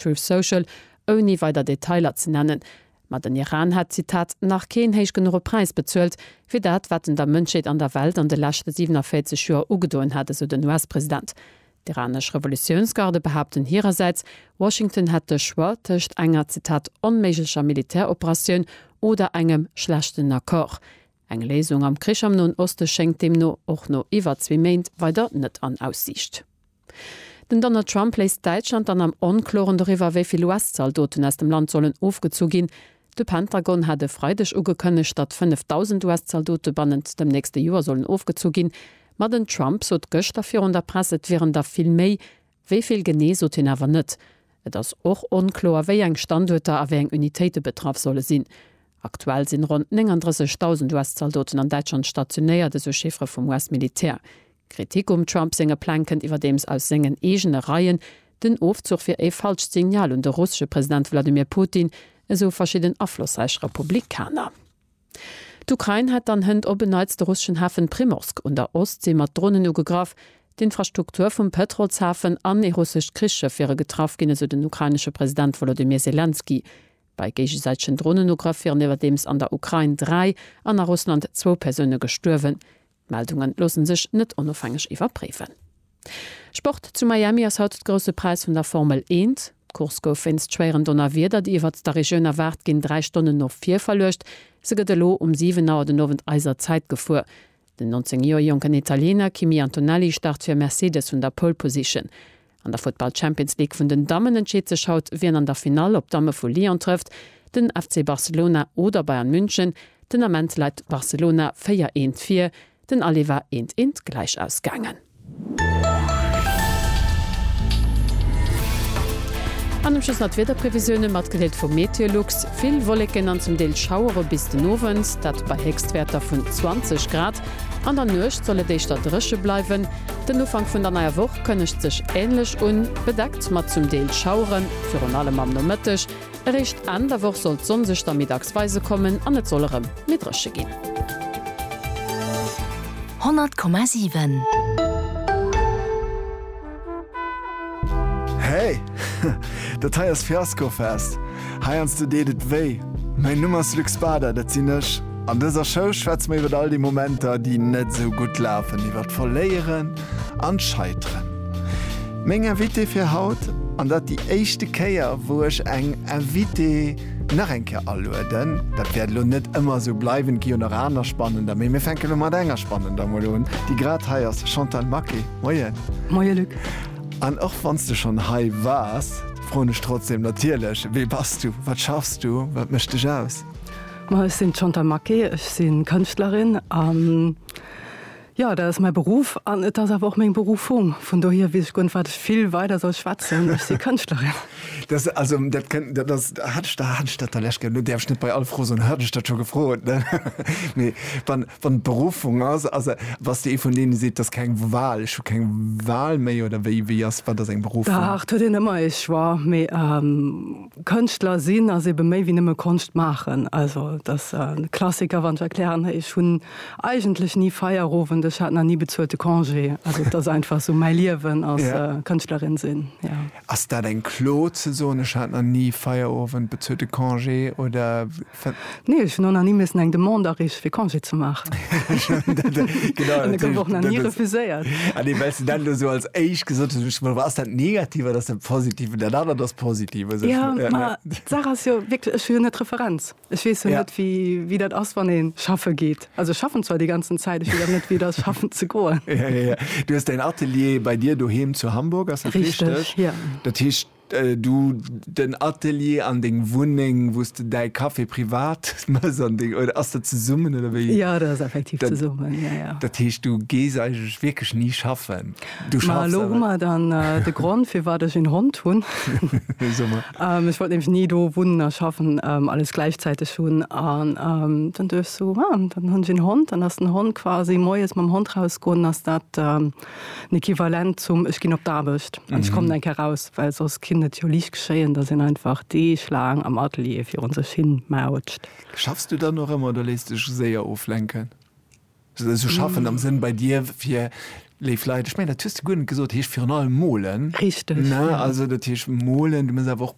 Truth Social, ouni weider Detailer ze nennen. Ma den Iran hätt, Zitat, nach keen héich genuche Präis bezuelt, fir dat, wat en der Mënschheet an der Welt an de leschte 47 Joer ugedoen hätt, esou den US-President. D'iranesch Revolutiounsgarde behaapten hirersäits, Washington hätt de Choix tëscht enger, Zitat, onméiglecher Militäroperatioun oder engem schlechten Accord. Eng Léisung am Krich am Noen Oste schéngt deemno och no iwwer zwee Méint weider net an Aussiicht. Den Donald Trump léisst Däitschland dann am Onkloren doriwwer, wéi vill US-Zaldoten aus dem Land sollen ofgezu ginn. De Pentagon hat e Freideg ugekënnegt, datt 5.000 US-Zaldote bannent dem nächste Joer sollen ofgezu ginn. Ma den Trump sot gëschter virun der Press, et wieren der vill méi. Wéi vill genee sot hien awer net. Et ass och onkloer, wéi eng Standuerter a wéi eng Unitéite betraff solle sinn. Aktuell sinn ronn 39.000 US-Zaldoten an Däitschland stationéiert, esou Chiffere vum US-Militär. Kritik um Trump senge Pläng kënnt iwwerdeems aus sengen eegene Reien. Den Ofzuch wier ee falscht Signal un de russesche President Wladimir Putin, esou verschidden aflossräich Republikaner. D'Ukrain hätt dann hënt op en Neits de russeschen Hafen Primorsk un der Ostsee mat Dronen ugegraff. D'Infrastruktur vum Pëtrolshafen an ee russescht Krichsschëff wiere getraff ginn, esou den ukrainesche President Wolodymyr Selenskyj. Bei géigesäitegen Dronenugrëff wieren iwwerdeems an der Ukrain dräi an a Russland zwou Persoune gestuerwen. D'Meldungen loossen sech net onofhängeg iwwerpréifen. Sport, Zu Miami ass haut d'Grousse Präis vun der Formel Eent. D'Course gouf wéinst schwéieren Donnerwieder, déi iwwert der Regioun erwaart ginn, 3 Stonnen no vir verluecht. Se gëtt elo um 7 Auer den Owend eiser Zäit gefuer. Den 19 Joer jonken Italiener Kimi Antonelli start fir Mercedes vun der Pole Position. An der Futtball Champions League vun den Dammen entscheet sech haut wien an der Finall op d'Damme vu Lyon trëfft, den FC Barcelona oder Bayern München. Den Ament läit Barcelona 4 eent vir, den Aller war eent eent gläich ausgaangen. An am Schluss nach d'Wiederprevisioune matgedeelt vu Meteolux, vill Wolleken an zum Deel Schauere bis den Owend, dat bei Héchstwäerter vun 20 Grad. An der Nuecht soll et éischter dréche bleiwen, Den Ufank vun der neier Woch kënnegt sech änlech un, bedeckt mat zum Deel Schaueren, virun allem am Nomëtteg. Eréischt Enn der Woch soll d'Sonn sech da middags weise kommen an et soll erëm méi dréche ginn. 100,7. Hey! Dat hei ass Fiaskofest! Heiansdo deet et wéi. Mäin Numm ass Luc Spader, dat sinn ech. An dëser Show schwätze mer iwwert all déi Momenter, déi net esou gutt lafen, iwwert d'Verléieren an d'Scheiteren. Meng Invitée fir haut, an dat déi éischte Kéier, wou ech eng Invitée nach eng Kéier alueden, dat wäert elo net ëmmer esou bleiwen, et gi jo nach aner Spannender, mee mir fänken elo mat enger Spannender emol un, déi grad hei ass, Chantal Maquet, Moien. Moie Luc. An och wann s de schonn hei waars, Froen ech trotzdem natierlech, Wee bass du? Wat schaffs du? Wat mécht dech aus? Ma ech sinn d'Chantal Maquet, ech si Kënschtlerin an jo, dat ass mäi Beruff an et ass awer och meng Berufung. Vun dohier weess ech guer net, wat ech vill weider soll schwätzen. Ech si Kënschtlerin. Dat also, dat kënnt, dat ass, hat ech, hat ech dat da lech, lo däerf ech net bei all Fro soen, hat ech dat scho gefrot, ne? Mee wann. Wann et Berufung ass, also was de ee vun deene seet, dass keng Wahl, ech hu keng Wahl méi oder wéi, wéi ass, wat ass eng Berufung? Dach, et huet een ëmmer ee Choix, mee Kënschtler sinn ass eebe méi wéi nëmme Konscht maachen. Also et ass e Klassiker wann ech erklären, ech hunn eigentlech ni Feierowend, ech hat nach ni bezuelte Congé, also et ass einfach esou mäi Liewen als Kënschtlerin sinn, jo. Ass dat eng Klo ze soen, ech hat nach ni Feierowend, bezuelte Congé oder? Nee, ech hunn och nach ni missen eng Demande areeche fir Congé ze maachen. An e gouf och nach ni refuséiert. Ah nee, well s de dat elo esou als éischt gesot hues, hunn ech gemollt, ma ass dat negativ oder ass dat positiv? An dat anert ass positiv. Jo, ma d'Saach ass jo wierklech, ech hu jo net d'Referenz. Ech weess jo net, wéi dat ass, wann ee schaffe geet. Also ech schaffen zwar déi ganzen Zäit, ech weess awer net, wéi et ass, schaffen ze goen. Du hues däin Atelier bei dir doheem zu Hamburg, ass dat richteg? Dat heescht, du den Atelier an deng Wunneng, wou s de däi Café privat méchs an deng. Oder ass dat zesummen? Jo, dat ass effektiv zesummen. Dat heescht, du gees eigentlech wierklech ni schaffen? Ma elo hu mer dann de Grond, firwat ech een Hond hunn. Ech wollt nämlech ni do wunnen a schaffen, alles gläichzäiteg hunn. An dann duecht ech sou, ah, dann hunn ech een Hond. Dann ass den Hond quasi moies mam Hond rausgoen, ass dat den Equivalent zum ech ginn op d'Aarbecht an ech kommen eng Kéier raus. Well soss kinnt et jo liicht geschéien, datt een einfach deeglaang am Atelier virun sech hin mautscht. Schaffs du dann och ëmmer oder léiss dech séier oflenken? Sou schaffen am Sënn bei dir fir léif Leit, ech mengen dat hues de guer net gesot, heescht virun allem molen. Richteg, jo. Also dat heescht molen, du muss awer och.